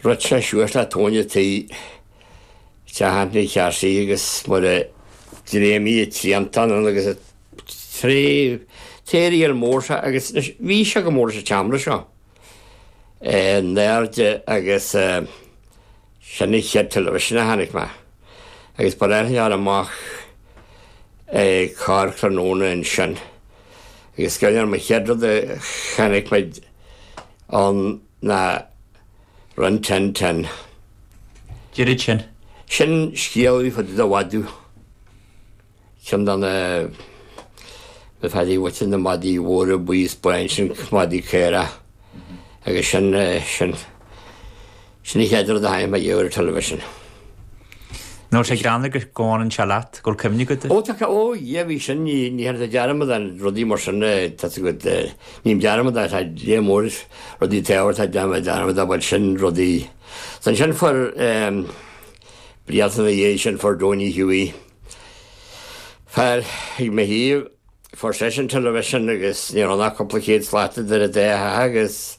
Rith sé suas le tóin an tí, Chatháin Ní Chearsaigh, agus mar a d'fhréamhaigh a triantán ann agus a tré theory ar mór sé agus anois bhí sé go mór sa tseomra seo, in airde agus sin an chéad television a chonaic mé agus ba ghnách linn a ghabháil amach corrthráthnóna ansin agus is cuimhin liom an chéad rud a chonaic muid ann, ná Rin Tin Tin. Deirid sin. Sin scéal fá, fá dtaobh de mhadadh ceann de na feadaí bhoichte, na madaí móra buí is bán sin, madaí caorach agus sin, sin, sin an chéad rud a chonaic mé ariamh ar television. Nós ag gráinne go gcomhaireann sé leat, go bhfuil cuimhne agat. Ó tá, ó dhia bhí sin, ní, ní théann sé dearmad ar rudaí mar sin, tá a fhios agat, ním dearmad ar, tá dia mór is rudaí taobh air, tá déanamh dearmad ar bhuel sin rudaí. Is ansin fuair eh blianta ina dhiaidh sin fuair Donie Hughie fear ag mo thaobh, fuair seisean television agus ní raibh ach cúpla céad slat idir an dá theach agus,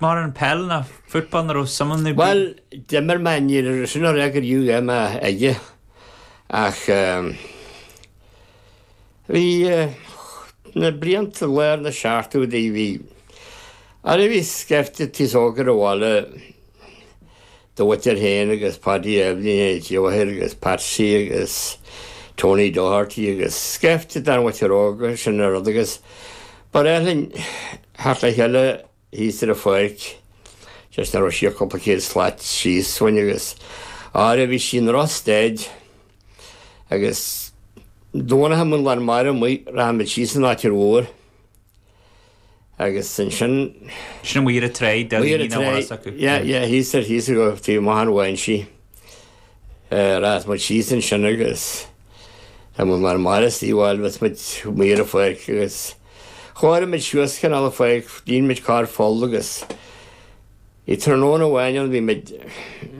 Maidir le peil nó football an raibh suman nó brí. Bhuel, d'imir mé, níor, sin ní raibh mé go rómhaith aige, ach bhí na blianta lár na seachtóidí, bhí, arae bhí scaifte d'aos óg ar an bhaile do mhuintir féin agus Páidí Eibhlín Ó Tiobhair agus Patsy agus Tony Doherty agus scaifte dár muintir óg, sin an rud agus ba ghnách linn theacht le chéile. thíos ar an pháirc, just ní raibh sé ach cúpla céad slat síos uainn agus áireamh bhí sí in Ros Dead agus Domhnach dá mbeadh an lán mara amuigh rachadh muid síos ar an tráigh mhór agus ansin. Sin ag imirt ar an tráigh, deich mhíle míle amhail as acu. Ag imirt ar an tráigh, yeah, thíos ar thíos go taobh amuigh thar Mhaínsí. Rachadh muid síos ansin agus dá mbeadh an lán mara istigh bhuel bhíodh muid ag imirt ar an pháirc agus. Chóireodh muid suas cineál de pháirc, dhéanfadh muid ceithre pholl agus i tráthnóna amháin ann bhí muid.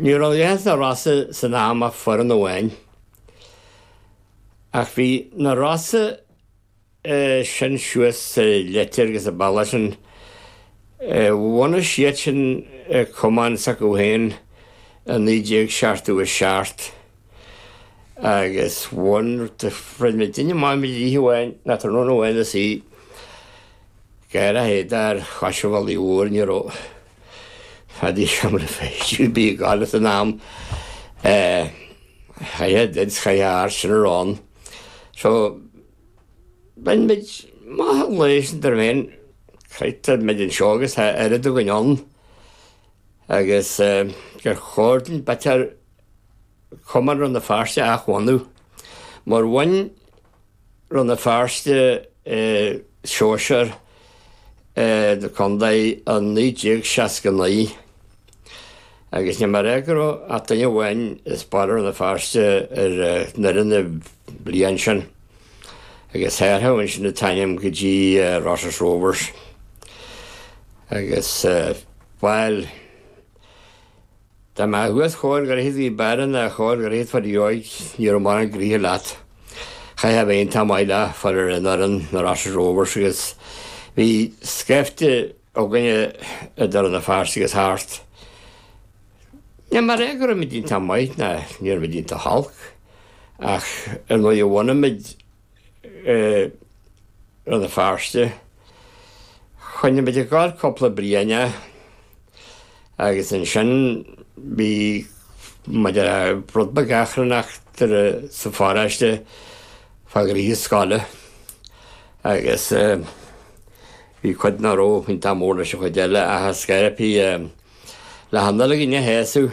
Ní raibh ins na Rosa san am ach foireann amháin. Ach bhí na Rosa sin suas sa Leitir agus an bealach sin. Bhunaigh siadsan cumann s'acu féin i 1977. agus bhain mé duine maith mo dhlíthe uainn, ná tráthnóna amháin is í gar a théada ar chois an bhealaigh mhóir, ní raibh fad a sheomra feistithe, bhí gá leis an am a chaitheamh dead is chaitheamh airsean a rá. So, bhain muid maith an lae sin dar féin, chroith muid anseo agus tá oiread againn ann agus gur chóir dúinn b'fhéidir Chumann Rann na Feirste a athbhunú. Mar bhain Rann na Feirste Sóisear na Condae i 1969 agus ní mar ea go raibh ach duine amháin as Baile Rann na Feirste ar an fhoireann an bhliain sin agus hathraíodh ansin an t-ainm go dtí Rosses Rovers agus bhuel Dá mbeadh thuas chóir gur thit bhí b'fhearr ná chóir gur thit fad dheoidh ní raibh mórán gnoithe leat. Chaithfeá a bheith iontach maith le fáil ar fhoireann na Rosses Rovers agus bhí scaifte againne i Rann na Feirste agus thart. Ní mar é go raibh muid iontach maith ná ní raibh muid iontach olc ach ar ndóigh bhunaigh muid i Rann na Feirste. Choinnigh muid ag gabháil cúpla bliain agus ansin bhí muid ar rud beag achrannach sa pharóiste fá ghnoithe scoile agus bhí cuid nach raibh iontach mór leis an chuid eile ach ar scor ar bith Lá Nollag ina sheasamh.